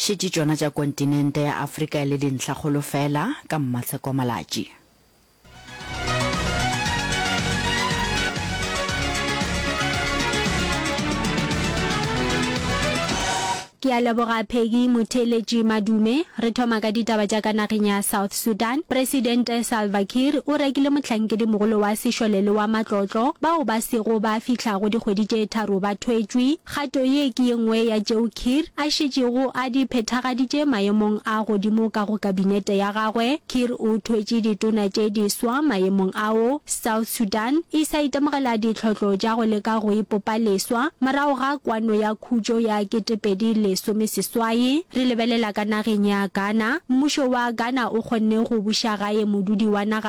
Šetše tšona tša kontinente ya Afrika e le dintlhakgolo feela ka mmatsheko malatši. Ke a leboga Peggy Motheeletši Madume. Re thoma ka ditaba tša ka nageng ya South Sudan. Presidente Salva Kiir o rekile mohlankedi-mogolo wa sešole le wa matlotlo bao ba sego ba fihla go dikgwedi tše tharo ba thwetšwe. Kgato ye ke ye nngwe ya tšeo Kiir a šetšego a di phethagaditše maemong a godimo ka go kabinete ya gagwe. Kiir o thwetše ditona tše diswa maemong ao, South Sudan e sa itemogela ditlhotlo tša go leka go ipopa leswa morago ga kwano ya khutšo ya ketepedi lesome seswai. Re lebelela ka nageng ya Ghana. Mmušo wa Ghana o kgonne go buša gae modudi wa naga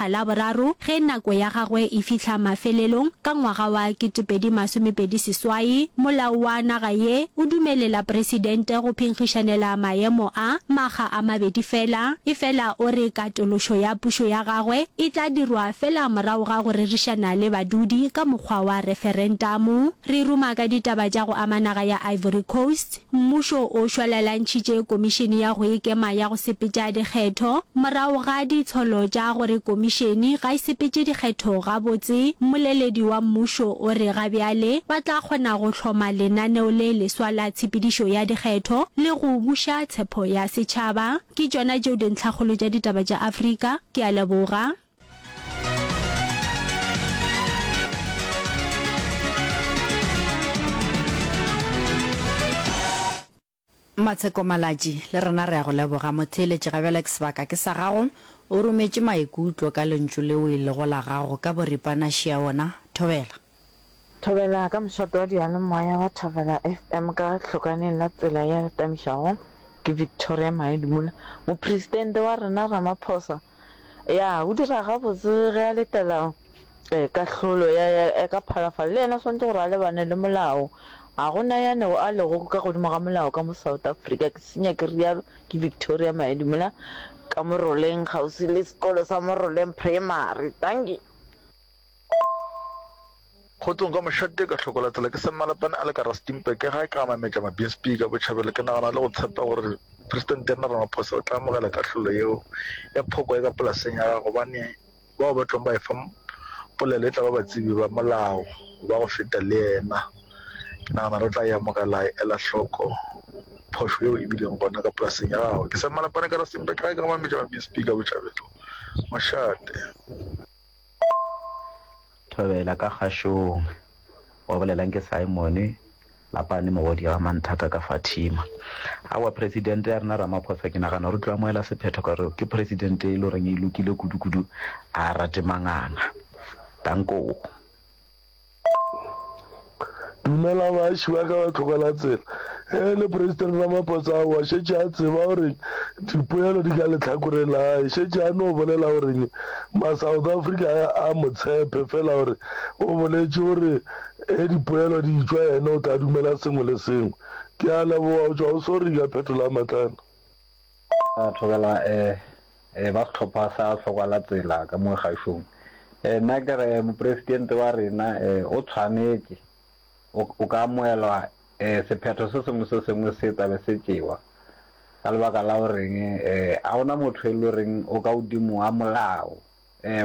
a Laboraro ge nako ya gagwe e fihla mafelelong ka ngwaga wa 2020 seswai, molao wa naga ye o dumelela Presidente go phenkgišanela maemo a makga a mabedi fela, efela o re katološo ya pušo ya gagwe e tla dirwa fela morago ga go rerišana le badudi ka mokgwa wa referentamu. Re ruma ka ditaba tša go ama naga ya Ivory Coast. Mmušo o šwalalantšhitše Komišene ya go Ikema ya go Sepetša Dikgetho morago ga ditsholo tša gore komišene ga e sepetše dikgetho gabotse. Mmoleledi wa mmušo o re ga bjale ba tla kgona go hloma lenaneo le leswa la tshepedišo ya dikgetho le go buša tshepho ya setšhaba. Ke tšona tšeo dintlhakgolo tša ditaba tša Afrika. Ke a leboga. Matsheko Malatši, le rena re a go leboga. Motheeletši ga bjale ke sebaka ke sa gago. O rometše maikutlo ka lentšu leo e lego la gago ka boripana šeaona. Thobela. Thobela ka mošate wa diyalemoya wa Thobela FM ka hlokaneng la tsela ya letamišago ke Victoria Maedimola. Mopresidente wa rena Ramaphosa ya o dira gabotse ge a letela kahlolo ya ya ka phalafalo le yena swantse gore a lebane le molao ga gona ya nego a lego ka godimo ga molao ka mo South Africa ke senya ke rialo ke Victoria Maedimola ka Moroleng kgauswi le sekolo sa Moroleng Primary. Dankie. Kgotsong ka mošate ka hloko latela ke Semmalapane a le ka Rustenburg ke ga ka mametša mabinsp ka botšhabelo ke nagana le go tshepa gore president ya Ramaphosa o tla amogela kahlolo yeo ya phoko ya ka polaseng ya ga gobane bao ba tlong ba e fa polelo e tla ba batsebi ba molao ba go feta le yena ke nagana re tla e amogela e ela hloko phošo yeo e bileng gona ka polaseng ya gago ke Semmalapane ka Rustenburg ke ga ka mametša mabinsp ka botšhabelo mošate Thobela ka kgašong. Wa bolelang ke Simon Lapane mogodi ga Manthata ka Fatima. Aowa Presidente ya rena Ramaphosa ke nagana gore o tlo amohela sephetho ka gore ke Presidente e le goreng e lokile kudu-kudu, a rate manganga. Danko. Dumela baaši ba ka ba tlhokela tsela. Ge e le President Ramaphosa o a šetše a tseba gore dipoelo di ka lehlakoreng la gae. Šetše a no bolela gore ma South Africa a mo tshepe fela gore o boletše gore ge dipoelo di tšwa yena o tla dumela sengwe le sengwe. Ke a leboga go tšwa go Sorry ka phetola matlana. Ra thobela ba sehlopha sa Hlokwalatsela ka mo Gašong. Nna ke re Mopresidente wa rena o tshwanetše o ka amogelwa sephetho se sengwe se sengwe se tla be se tšewa ka lebaka la goreng ga go na motho e le goreng o ka godimo ga molao,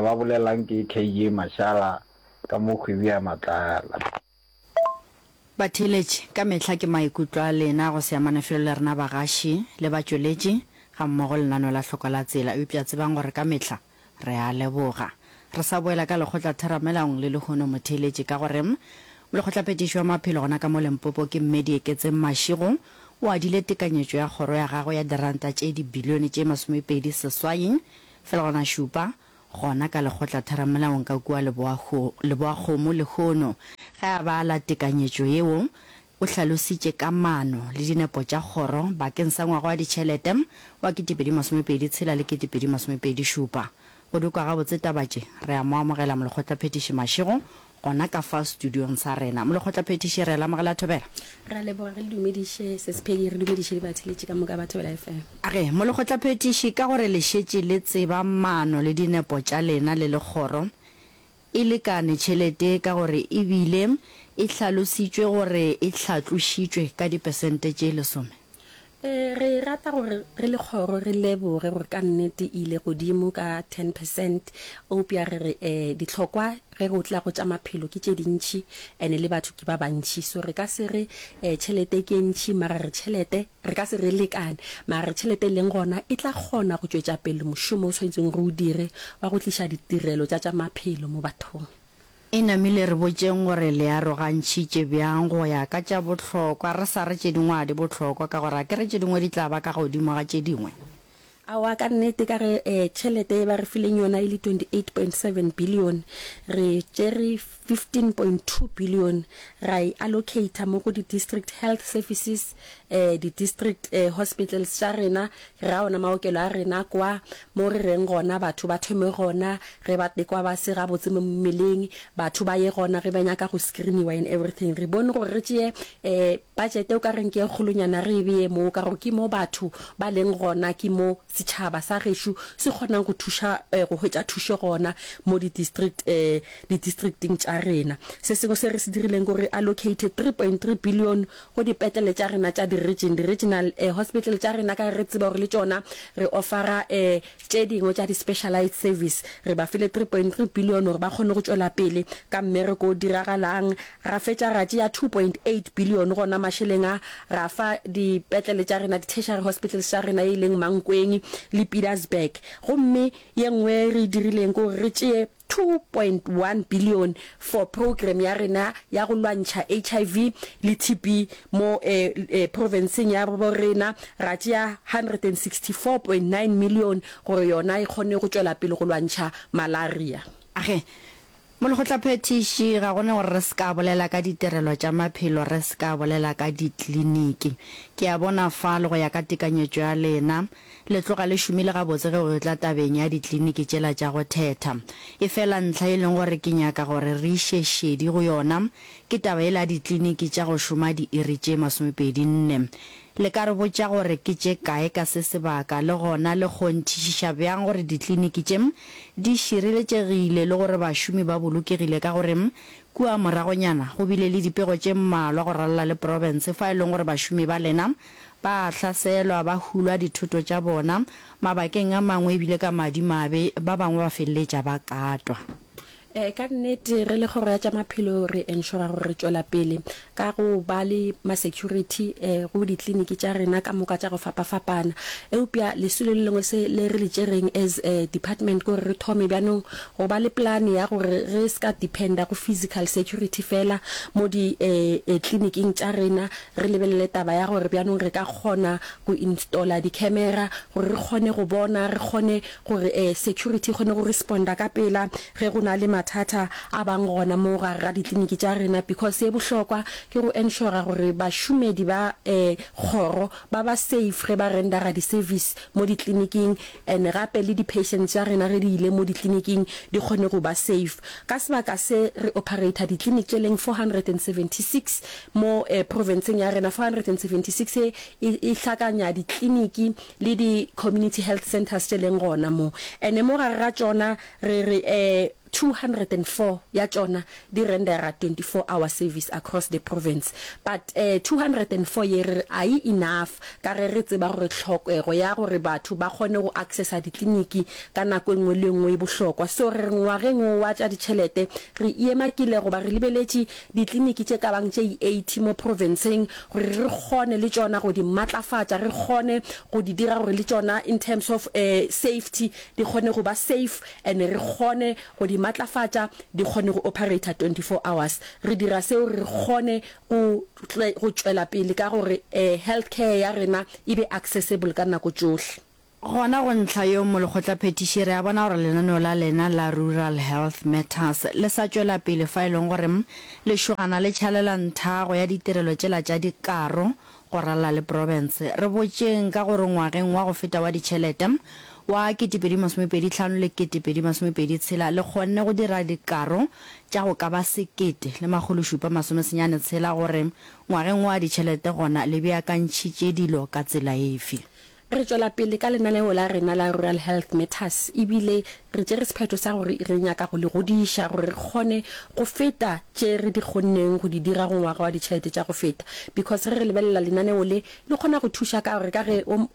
ba bolelwang ke KG Mashala ka mo Kgwebia Matlala. Batheeletši ka mehla ke maikutlo a lena go se amane felo le rena bagaši le batšweletši gammogo lenaneo la Hloko la Tsela, eupša tsebang gore ka mehla re a leboga. Re sa boela ka Lekgotla Theramelaong le lehono, motheeletši, ka gore Molekgotlaphethiši wa Maphelo gona ka mo Limpopo ke Mme Dieketseng Mashego o adile tekanyetšo ya kgoro ya gagwe ya diranta tše dibilione tše masomepedi seswai fegelwana šupa gona ka lekgotlatheramolaong ka kua Leboakgomo lehono, ge a bala tekanyetšo yeo, o hlalositše ka maano le dinepo tša kgoro bakeng sa ngwaga wa ditšhelete wa 2026 le 2027. Go dikwa gabotse taba tše, re a mo amogela Molekgotlaphethiši Mashego gona ka fa studiong sa rena. Molekgotlaphethiši, re lamogela thobela. Re a leboga, re le dumediše Sesphedi, re dumediše dibatheletši ka moka ba Thobela FM. Age, Molekgotlaphethiši, ka gore le šetše le tseba maano le dinepo tša lena le le kgoro, e lekane tšhelete ka gore e bile e hlalositšwe gore e hlatlošitšwe ka dipesente tše lesome. E, re rata gore re le kgoro re leboge gore ka nnete e ile godimo ka 10 percent. Eupša re re e, dihlokwa ge go tla go tša maphelo ke tše dintši and le batho ke ba bantši. So re ka se re e, tšhelete ke e ntši mara re tšhelete re ka se re e lekane mara re tšhelete e leng gona e tla kgona go tšwetša pele mošomo o swanetseng re o dire wa go tliša ditirelo tša tša maphelo mo bathong. E namile re botšeng gore le arogantšhitše bjang go ya ka tša bohlokwa re sa re tše dingwe ga di bohlokwa ka gore akere tše dingwe di tla ba ka godimo ga tše dingwe? Aowa ka nnete ka ge tšhelete ye ba re fileng yona e le 28.7 bilione re tšere 15.2 bilione ra e allocater mo go di-district health services eh, di-district eh, hospitals tša rena, ra ona maokelo a rena kwa mo re reng gona batho ba thome gona ge ba tekwa ba se gabotse mo mmeleng, batho ba ye gona ge ba nyaka go screeniwa and everything. Re bone gore re tšeye eh, budget o ka reng ke e kgolonyana re e beye moo ka gore ke mo batho ba leng gona ke mo setšhaba sa gešo se kgonang go thuša eh, go hwetša thušo gona mo di-district eh, di-districting tša rena. Se sengwe se re se dirileng gore re allocate 3.3 billion go dipetlele tša rena tša di-region, di-regional eh, hospital tša rena, ka ge re tseba gore le tšona re offera eh, tše dingwe tša di-specialized service. Re ba file 3.3 billion gore ba kgone go tšwela pele ka mmereko o diragalang. Ra fetša ra tšea 2.8 billion gona mašeleng a, ra fa dipetlele tša rena, di-tertiary hospitals tša rena, e leng Mankweng le Pietersburg. Gomme ye nngwe re e dirileng ke gore re tšee, 2.1 bilione for program ya rena ya go lwantšha HIV le TB mo profenseng ya bo rena, ra tšea 164.9 milione gore yona e kgone go tšwela pele go lwantšha malaria. A re, Molekgotlaphethiši, ga go ne gore re se ka bolela ka ditirelo tša maphelo re se ka bolela ka ditliniki. Ke a bona fa le go ya ka tekanyetšo ya lena, Le tloga le šomile gabotse ge go tla tabeng ya dikliniki tšela tša go thetha. Efela ntlha e leng gore ke nyaka gore re iše šedi go yona ke taba yela ya dikliniki tša go šoma diiri tše masomepedi nne. Le ka re botša gore ke tše kae ka se sebaka le gona le kgonthišiša bjang gore dikliniki tše di šireletšegile le gore bašomi ba bolokegile ka gore kua moragonyana go bile le dipego tše mmalwa go ralala le profense fa e leng gore bašomi ba lena Ba a hlaselwa, ba hulwa dithoto tša bona, mabakeng a mangwe e bile ka madimabe, ba bangwe ba feleletša ba katwa. Ee, ka nnete, re le Kgoro ya tša Maphelo re enšora gore re tšwela pele ka go ba le masecurity go dikliniki tša rena ka moka tša go fapafapana. Eupša lesilo le lengwe se le re le tšereng as department ke gore re thome bjanong go ba le plan ya gore re se ka dependa go physical security feela mo dikliniking tša rena Re lebelele taba ya gore bjanong re ka kgona go installer di camera gore re kgone go bona, re kgone gore um security e kgone go responder ka pela ge go na le mathata a bang gona mo gare ga ditliniki tša rena because ye bohlokwa ke go ensure gore bašomedi ba um kgoro ba ba safe ge ba rendera di service mo ditliniking and gape le di patients tša rena ge di ile mo ditliniking di kgone go ba safe. Ka sebaka se re operator ditlinik tše leng 476 Mo profenseng ya rena 476 e, e hlakanya ditliniki le di community health centres tše leng gona mo, ene mo gare ga tšona re re 204 ya tšona di rendera 24 hour service across the province. But 204 ye re re a e enough ka ge re tseba gore tlhokego ya gore batho ba kgone go accessa ditliniki ka nako e nngwe le e nngwe e bohlokwa. So re re ngwageng wo wa tša ditšhelete re iemakile goba re lebeletše Ditliniki tše ka bang tše 80 mo profenseng gore re kgone le tšona go di matlafatša, re kgone go di dira gore le tšona in terms of safety di kgone go ba safe and re kgone go di matlafatša di kgone go operator 24 hours. Re dira seo gore re kgone go go tšwela pele ka gore healthcare ya rena e be accessible ka nako tšohle. Gona go ntlha yo molekgotlaphethiši re a bona gore lenaneo la lena la Rural Health Matters le sa tšwela pele fa e leng gore lešogana le tšhalela nthago ya ditirelo tšela tša dikaro go ralla le profense. Re botšeng ka gore ngwageng wa go feta wa ditšhelete wa ketepedi masomepedi hlano le ketepedi masomepedi tshela le kgonne go dira dikaro tša go ka ba sekete le makgolo šupa masome senyane tshela gore ngwageng wa ditšhelete gona le beakantšhitše dilo ka tsela efe? Re tšwela pele ka lenaneo la rena la Rural Health Matters e bile re tšere sephetho sa gore re nyaka go le godiša gore re kgone go feta tše re di kgonneng go di dira go ngwaga wa ditšhelete tša go feta because ge re lebelela lenaneo le le kgona go thuša ka gore ka ge um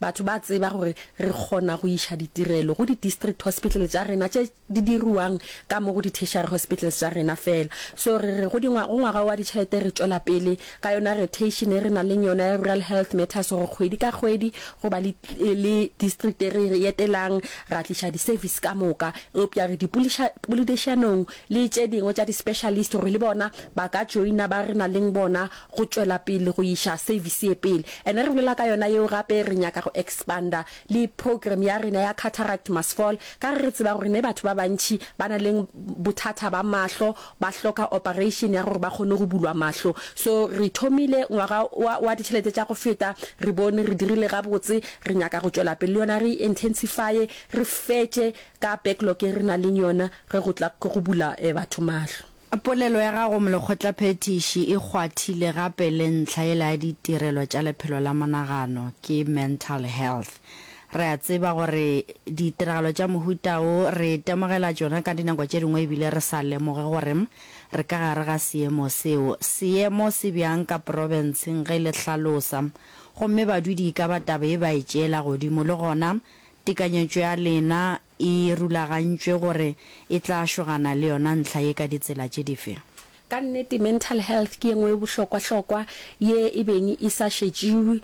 batho ba tseba gore re kgona go iša ditirelo go di-district hospital tša rena tše di diriwang ka mo go di-tertiary hospitals tša rena fela. So re re go di go ngwaga wa ditšhelete re tšwela pele ka yona rotation e re nang le yona ya Rural Health Matters gore kgwedi ka kgwedi go ba le district e re etelang ra tliša di-service ka moka. Eupša re di poledišanong le tše dingwe tša di-specialist gore le bona ba ka joina ba re nang le bona go tšwela pele go iša service ye pele. And-e re bolela ka yona yeo gape re nyaka go expanda Le program ya rena ya cataract must fall ka ge re tseba gore ne batho ba bantši ba na leng bothata ba mahlo ba hloka operation ya gore ba kgone go bulwa mahlo. So re thomile ngwaga wa wa ditšhelete tša go feta re bone re dirile gabotse re nyaka go tšwela pele le yona re intensifye re fetše ka backlog e re na leng yona ge go tla go bula batho mahlo. Polelo ya gago Molekgotlaphethiši e kgwathile gape le ntlha yela ya ditirelo tša lephelo la monagano ke mental health. Re a tseba gore ditiragalo tša mohuta wo re itemogela tšona ka dinako tše dingwe ebile re sa lemoge gore re ka gare ga seemo seo. Seemo se bjang ka profenseng ge le hlalosa gomme badudi e ka ba taba ye ba e tšeela godimo le gona tekanyetšo ya lena E rulagantšwe gore e tla šogana le yona ntlha ye ka ditsela tše dife? Ka nnete, mental health ke ye nngwe ye bohlokwa-hlokwa ye e beng e sa šetšiwe,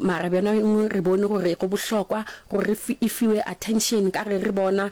mara bjona gongwe re bone gore go bohlokwa gore e fiwe attention ka ge re bona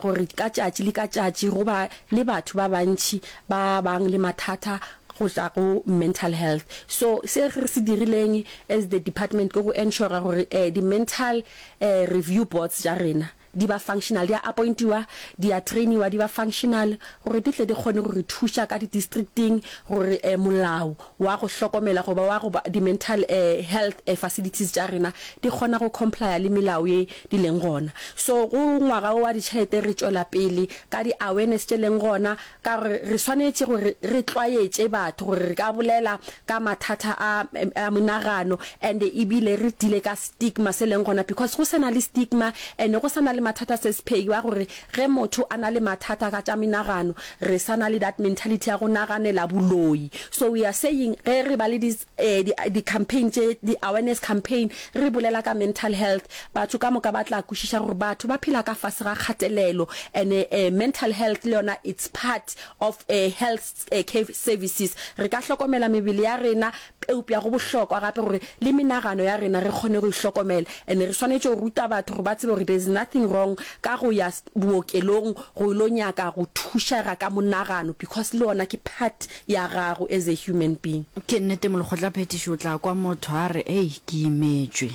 gore ka tšatši le ka tšatši go ba le batho ba bantši ba bang le mathata go tšwa go mental health. So se re se dirileng as the department ke go ensure gore di-mental Review boards tša rena di ba functional, di a appointiwa, di a trainiwa, di ba functional gore di tle di kgone go re thuša ka di-districting gore molao wa go hlokomela goba wa go ba di-mental health facilities tša rena di kgona go complya le melao ye di leng gona. So go ngwaga wo wa ditšhelete re tšwela pele ka di-awareness tše leng gona, Ka gore re swanetše gore re tlwaetše batho gore re ka bolela ka mathata a a monagano and ebile re deale ka stigma se leng gona because go sena le stigma and go sana le mathata se sephegi wa gore ge motho a na le mathata ka tša menagano re sana le that mentality ya go naganela boloi so we are saying ge re ba le di di campaign tše di awareness campaign re bolela ka mental health batho ka moka ba tla kwešiša gore batho ba phela ka fase ga kgatelelo ene eh, mental health le yona it's part of a eh, health eh, care services re ka hlokomela mebele ya rena eupša go bohlokwa gape gore le menagano ya rena re kgone go ihlokomela ene re swanetše go ruta batho gore ba tsebe gore there's nothing wrong ka go ya bookelong go ilo nyaka go thušega ka monagano because le yona ke part ya gago as a human being. Ke nnete molekgotlaphethiši o tla kwa motho a re, Ei, ke imetšwe.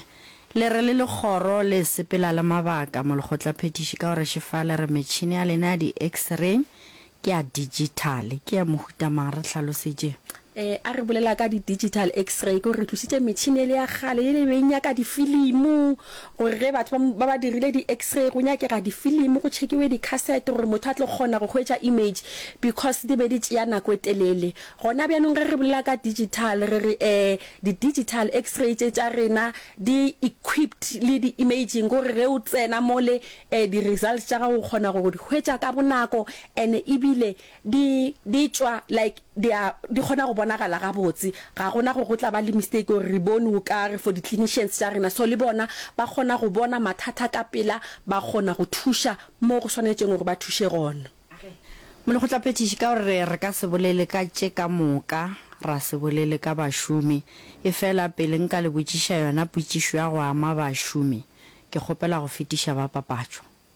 Le re le le kgoro le sepela le mabaka, molekgotlaphethiši, ka gore šefa le re metšhene ya lena ya di-X-ray ke ya digital. Ke ya mohuta mang? Re hlalosetše. Ee, a re bolela ka di-digital X-ray, ke gore re tlositše metšhene yele ya kgale yele e be e nyaka difilimo. gore ge batho ba, ba ba dirile di-X-ray go nyakega difilimi go tšhekiwe dikhasete gore motho a tlo kgona go hwetša image because di be di tšea nako e telele. Gona bjanong ge re bolela ka digital re re ee di-digital X-ray tše tša rena di equipped le di-imaging gore ge o tsena mole ee di-results tša gago o kgona go di hwetša ka bonako and ebile Di, di tšwa, like, di a, di kgona go bonagala gabotse. Ga go na gore go tla ba le mistake gore re bone o ka re for di-clinicians tša rena. So le bona ba kgona go bona mathata ka pela, ba kgona go thuša mo go swanetšeng gore ba thuše gona. Molekgotlaphethiši, ka gore re ka se bolele ka tše ka moka, ra se bolele ka bašomi. Efela pele nka le botšiša yona potšišo ya go ama bašomi, ke kgopela go fetiša ba papatšo.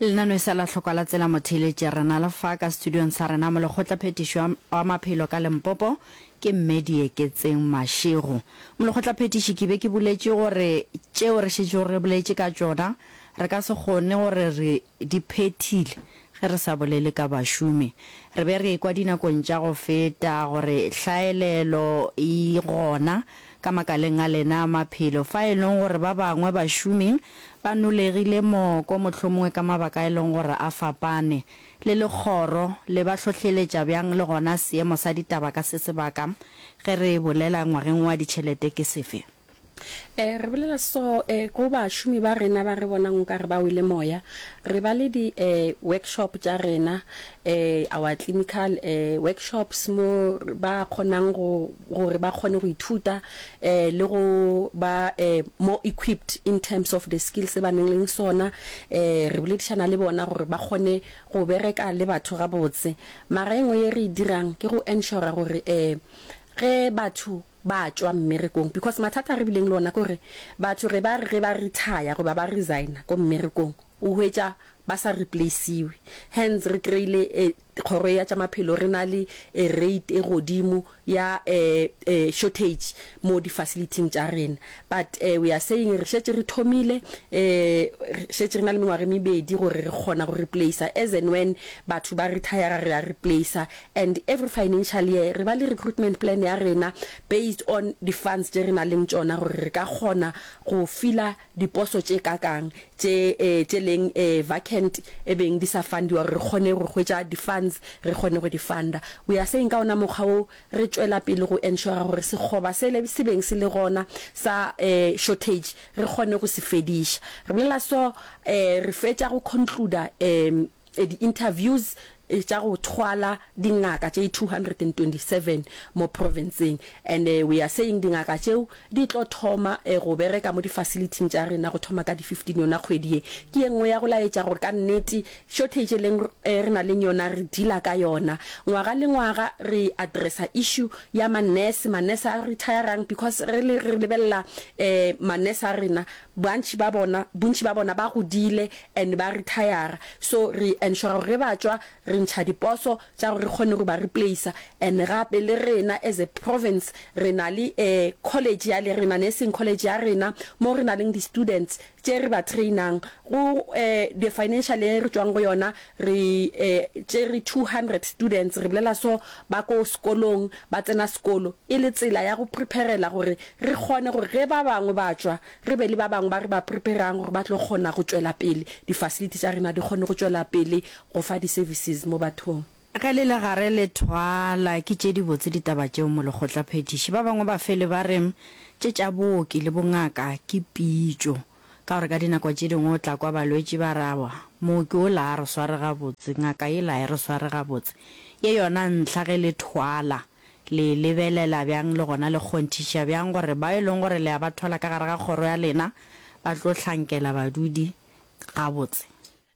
Lenaneo e sa la hlokwa la tsela motheeletše rena le fa ka studiong sa rena molekgotla phetiši wa maphelo ka Limpopo ke Mme Dieketseng Mashego. Molekgotla phetiši ke be ke buletše gore tšeo re šetšego re boletše ka tšona re ka se kgone gore re di phethile Ge re sa bolele ka bašomi, re be re ekwa dinakong tša go feta gore hlaelelo e gona ka makaleng a lena a maphelo, fa e leng gore ba bangwe bašomi ba nolegile moko, mohlomongwe ka mabaka a e leng gore a fapane. Le Legoro le ba hlohleletša bjang le gona seemo sa ditaba ka se sebaka ge re bolela ngwageng wa ditšhelete ke sefe? Re bolela so go bašomi ba rena ba re bonang o ka re ba wele moya. Re ba le di-workshop tša rena, our clinical workshops, mo ba kgonang gore ba kgone go ithuta le go ba more equipped in terms of the skills se ba nang le sona. Re boledišana le bona gore ba kgone go bereka le batho gabotse. Mara e nngwe ye re e dirang ke go ensure gore ge batho ba tšwa mmerekong because mathata a re bileng le ona ke gore batho ge ba re ge ba retire goba ba resigner ko mmerekong o hwetša ba sa replaciwe hence re kry-ile kgoro ya tša maphelo re na le rate e godimo ya shortage mo di facility-ing tša rena but we are saying re šetše re thomile re šetše re na le mengwaga e mebedi gore re kgona go replacer as and when batho ba retire re a replacer And every financial year re ba le recruitment plan ya rena based on di funds tše re na leng tšona gore re ka kgona go filler diposo tše kakang tše tše leng vacant e beng di sa fundiwa gore re kgone go hwetša di funds re kgone go di funda. We are saying ka ona mokgwa wo re tšwela pele go ensure gore sekgoba sele se beng se le gona sa shortage re kgone go se fediša. Re bolela so re fetša go concluder di-interviews tša go thwala dingaka tše 227 mo profenseng and we are saying dingaka tšeo di tlo thoma go bereka mo di-facility-ing tša rena go thoma ka di 15 yona kgwedi ye ke ye nngwe ya go laetša gore ka nnete shortage leng re na leng yona re dila ka yona ngwaga le ngwaga re addressa issue ya ma-nurse ma-nurse a retire-rang because re lebelela ma-nurse a rena Bontši ba bona, bontši ba bona ba godile and ba retire-ra so re ensure gore ge ba tšwa re ntšha diposo tša gore re kgone go ba replacer and gape le rena as a province re na le a college ya le rena, nursing college ya rena mo re na leng di students tše re ba train-ang go the financial ye re tšwang go yona Re tšere two hundred students, re bolela so, ba ko sekolong, ba tsena sekolo e le tsela ya go prepare-rela gore re kgone gore ge ba bangwe ba tšwa, re be le ba bangwe ba re ba prepare-rang gore ba tlo kgona go tšwela pele, di-facility tša rena di kgone go tšwela pele go fa di-services mo bathong. Ge le le gare le thwala, ke tše dibotse ditaba tšeo molekgotlaphethiši. Ba bangwe bafeli ba re tše tša booki le bongaka ke pitšo. Ka gore ka dinako tše dingwe o tla kwa balwetši ba re, Aowa, mooki ola a re sware gabotse, ngaka yela ha e re sware gabotse. Ye yona ntlha ge le thwala, le e lebelela bjang le gona le kgonthiša bjang gore bao e leng gore le a ba thwala ka gare ga kgoro ya lena ba tlo hlankela badudi gabotse?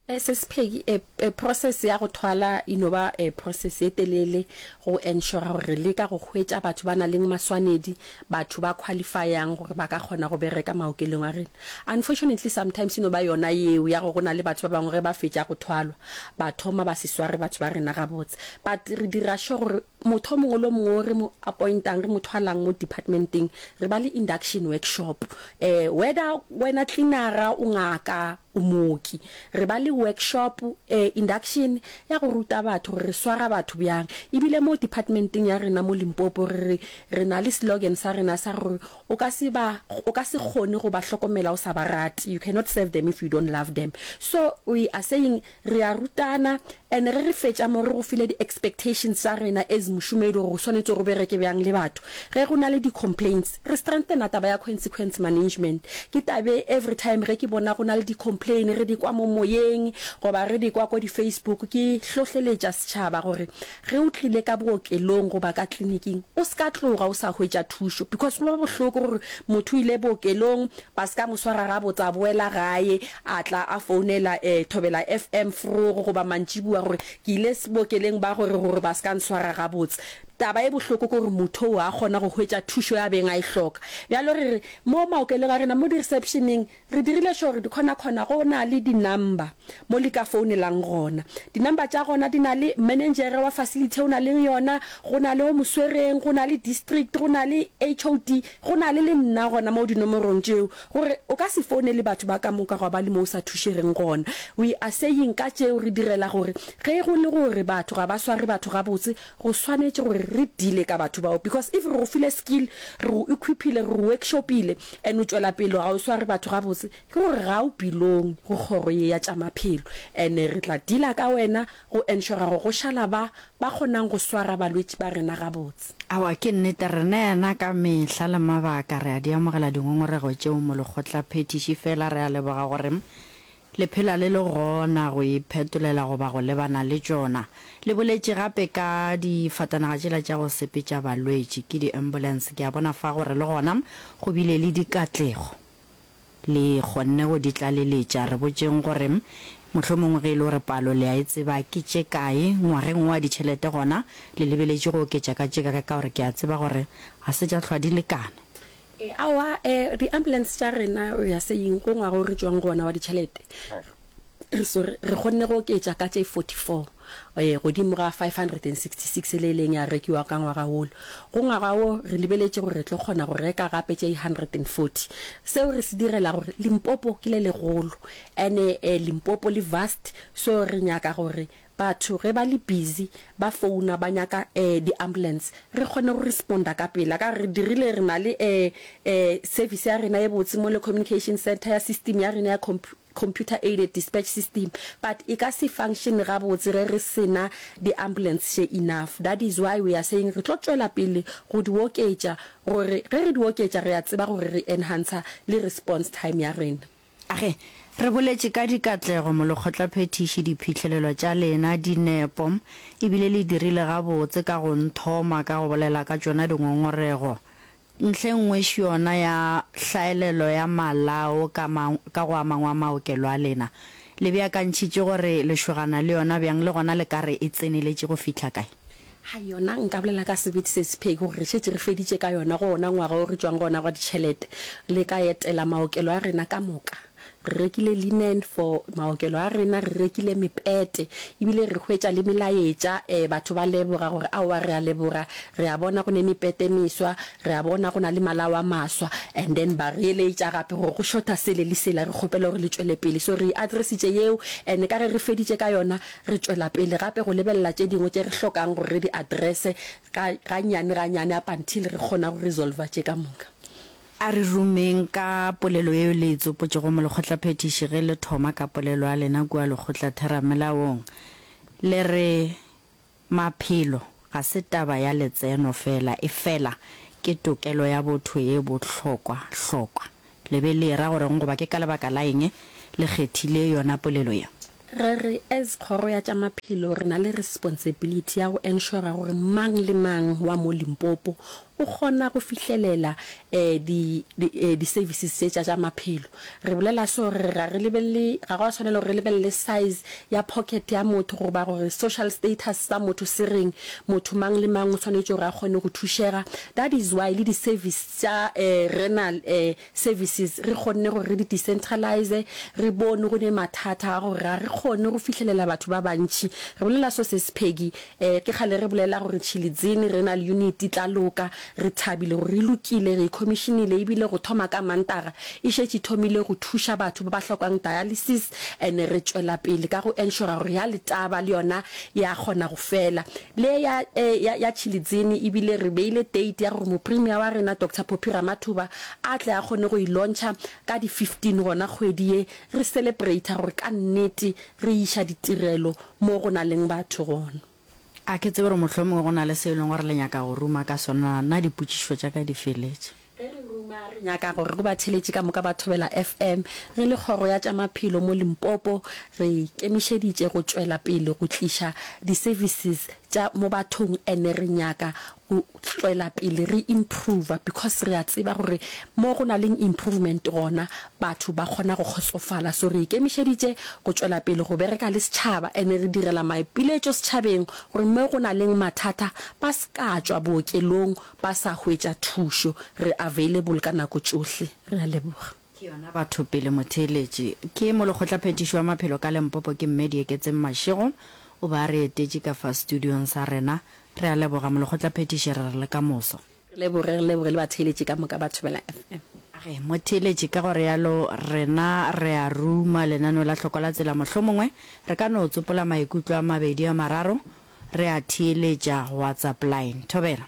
E se sepheki, e, e process ya go thwala e no ba e process ye telele go ensure gore re leka go hwetša batho ba na leng maswanedi, batho ba qualify-ang gore ba ka kgona go bereka maokelong a rena. Unfortunately sometimes e no ba yona yeo ya gore go na le batho ba bangwe ge ba fetša go thwalwa ba thoma ba se sware batho ba rena gabotse. But re dira sure gore motho o mongwe le o mongwe o re mo appointang, re mo thwalang mo department-eng, re ba le induction workshop. Um whether wena cleaner-a, o ngaka, O mooki. Re ba le workshop, eh, induction, ya go ruta batho gore re swara batho bjang. E bile mo departmenteng ya rena mo Limpopo re re, re na le slogan sa rena sa gore o ka se ba, o ka se kgone go ba hlokomela o sa ba rate, you cannot serve them if you don't love them. So we are saying re a rutana and ge re fetša mo re go file di-expectations tša rena as mošomedi gore o swanetše go bereke bjang le batho ge go na le di-complaints. Re strengthena taba ya consequence management. Ke tabe every time ge ke bona go na le di complain re di kwa mo moyeng goba re di kwa ko di Facebook ke hlohleletša setšhaba gore ge o tlile ka bookelong goba ka clinic-ing o se ka tloga o sa hwetša thušo because go ba bohloko gore motho o ile bookelong ba se ka mo swara gabotse a boela gae a tla a founela eh, Thobela FM forogo goba mantšibua gore ke ile bookeleng ba gore gore ba se ka nswara gabotse. Taba e bohloko ke gore motho o a kgona go hwetša thušo ya beng a e hloka. Bjalo re re, mo maokelong a rena, mo di-reception-eng, re dirile sure gore dikgonakgona go na le di-number mo le ka founelang gona. Di-number tša gona di na le manengere wa facility e o na leng yona, go na le o mo swereng, go na le district, go na le HOD, go na le le nna gona mo dinomorong tšeo. Gore o ka se founele batho ba ka moka gwa ba le mo o sa thušegeng gona. We are saying ka tšeo re direla gore ge go le gore batho ga ba sware batho gabotse, Go swanetše gore re deale ka batho bao because if re go file skill, re go equipile, re go workshopile and o tšwela pele ga o sware batho gabotse, ke gore ga o belong go kgoro ye ya tša maphelo and re tla dealer ka wena go ensure gore go šala ba ba kgonang go swara balwetši ba rena gabotse. Aowa, ke nnete, rena yana ka mehla le mabaka re a di amogela dingongorego tšeo mo lekgotlaphethiši fela re a leboga gore Le phela le le gona go e phetolela goba go lebana le tšona. Le boletše gape ka difatanaga tšela tša go sepetša balwetši, ke di-ambulance. Ke a bona fa gore le gona go bile le dikatlego. Le kgonne go di tlaleletša. Re botšeng gore mohlomongwe ge e le gore palo le a e tseba, ke tše kae ngwageng wo a ditšhelete gona le lebeletše go oketša ka tše kae ka gore ke a tseba gore ga se tša hlwa di lekana. E, aowa, e, di-ambulance tša rena, we are saying, ko ngwaga o re tšwang go ona wa ditšhelete, re sorry, re kgonne go oketša ka tše 44 e, godimo ga 566 e le e leng ya rekiwa ka ngwaga wolo. Go ngwaga wo re lebeletše gore re tlo kgona go reka gape tše 140. Seo re se direla gore Limpopo ke le legolo, and-e e, Limpopo le vast, so re nyaka gore Batho ge ba le busy ba founa ba nyaka um di ambulance re kgone go responda ka pela ka re dirile re na le um service ya rena e botse mo le communication center ya system ya rena ya computer aided dispatch system but e ka se function ga botse ge re sena di ambulance she enough that is why we are saying re tlo tšwela pele go di oketša gore ge re di oketša re a tseba gore re enhancer le response time ya rena Ge re boletše ka dikatlego mo lekgotlaphethiši diphihlelelo tša lena di nepo e bile le dirile gabotse ka go nthoma ka go bolela ka tšona dingongorego ntlhengwe xona ya hlaelelo ya malao ka ka go amangwe a maokelo a lena le beakantšhitše gore lešogana le yona bjang le gona le ka re e tseneletše go fihla kae. Hai yona nka bolela ka sebete se sepheki gore re šetše re feditše ka yona go ona ngwaga o re tšwang go ona gwa ditšhelete le ka etela maokelo a rena ka moka. Re rekile linen for maokelo a rena, re rekile mepete ebile re hwetša le melaetša um batho ba leboga gore aowa re a leboga re a bona go ne mepete meswa, re a bona go na le malao a maswa and then ba re eletša gape gore go shorta sele le sela re kgopela gore le tšwele pele so re e addressitše yeo and ka ge re feditše ka yona Re tšwela pele gape go lebelela tše dingwe tše re hlokang gore re di addresse ga, gannyane gannyane up until re kgona go resolver tše ka moka. A re rumeng ka polelo yeo le e tsopotšego molekgotlaphethiši ge le thoma ka polelo ya lena kua lekgotlatheramelaong. Le re, Maphelo ga se taba ya letseno feela, efela ke tokelo ya botho ye bohlokwa-hlokwa. Le be le e-ra go reng goba ke ka lebaka la eng le kgethile yona polelo ye? Re re as Kgoro ya tša Maphelo re na le responsibility ya go ensure gore mang le mang wa mo Limpopo o kgona go fihlelela di di services tše tša tša maphelo. Re bolela so re re ga re lebelele, ga go a swanela gore re lebelele size ya pocket ya motho goba gore social status sa motho se reng, motho mang le mang o swanetše gore a kgone go thušega. That is why le di service tša renal services re kgonne gore re di decentralize, re bone go ne mathata a gore ga re kgone go fihlelela batho ba bantši. Re bolela so ses Peggy, ke kgale re bolela gore Chilidzini renal unit e tla loka, re thabile gore e lokile, re e commissionile ebile go thoma ka Mantaga e šetše e thomile go thuša batho ba ba hlokang dialysis. And re tšwela pele ka go ensure gore ya Letaba le yona ya kgona go fela. Le ya, ya, ya Chilidzini ebile re beile date ya gore Mopremier wa rena Doctor Poppy Ramathuba a tle a kgone go e launcher ka di 15 gona kgwedi ye, re celebrate gore ka nnete re iša ditirelo mo go na leng batho gona. A ke tsebe gore mohlomongwe go na le seo e leng gore le nyaka go ruma ka sona, na dipotšišo tša ka di feletše? Ge re ruma, re nyaka gore go batheeletši ka moka ba Thobela FM, re le Kgoro ya tša Maphelo mo Limpopo, re ikemišeditše go tšwela pele go tliša di-services tša mo bathong ene re nyaka go tšwela pele re improver because re a tseba gore mo go na leng improvement gona batho ba kgona go kgotsofala so re ikemišeditše go tšwela pele go bereka le setšhaba ene re direla maipiletšo setšhabeng gore mo go na leng mathata ba se ka tšwa bookelong ba sa hwetša thušo re available ka nako tšohle re a leboga Ke yona batho pele motheeletši. Ke molekgotlaphethiši wa maphelo ka Lempopo ke Mme Dieketseng Mashego. O be a re etetše ka fa studiong sa rena. Re a leboga molekgotlaphethiši re re le ka moso. Re leboge, re leboge le batheeletši ka moka ba Thobela FM. A re motheeletši ka go realo rena re a ruma lenaneo la hlokwa la tsela mohlomongwe re ka no tsopola maikutlo a mabedi a mararo re a theeletša WhatsApp line. Thobela.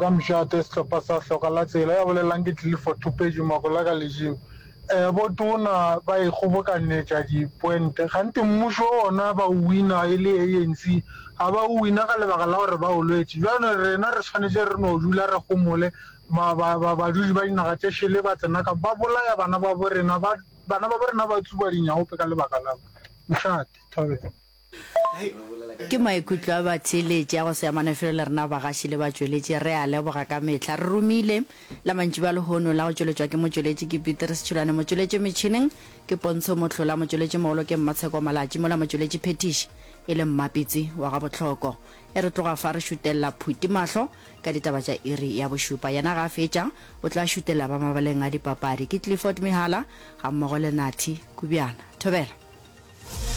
Ka mošate, sehlopha sa Hloka la Tsela ya bolelelang ke tlile for thupetšo mako la ka lejeng. Botona ba e kgobokanetša di poente kgante mmušo ona ba o wina e le ANC ga ba o wina ka lebaka la gore ba o lwetše. Bjale rena re swanetše re no dula re gomole ba badudi ba dinaga tše šele ba tsena ka ba bolaya bana babo rena ba bana babo rena ba tsuba dinyaope ka lebaka la mošate. Thobela. Ke maikutlo a batheeletši a go se amane felo le rena bagaši le batšweletši. Re a leboga ka mehla. Re romile la mantšiboa a lehono la go tšweletšwa ke motšweletši ke Peteri Setšhulane, motšweletši metšhineng ke Pontsho Mohlola, motšweletši mogolo ke Mmatsheko Malatši mola motšweletši phethiši e le Mmapitsi wa ga Botlhoko. E re tloga fa re šutelela Phuti mahlo ka ditaba tša iri ya bošupa. Yena ga a fetša o tla šutelela ba mabaleng a dipapadi. Ke Clifford Mehala gammogo le Nathi Kubjana. Thobela.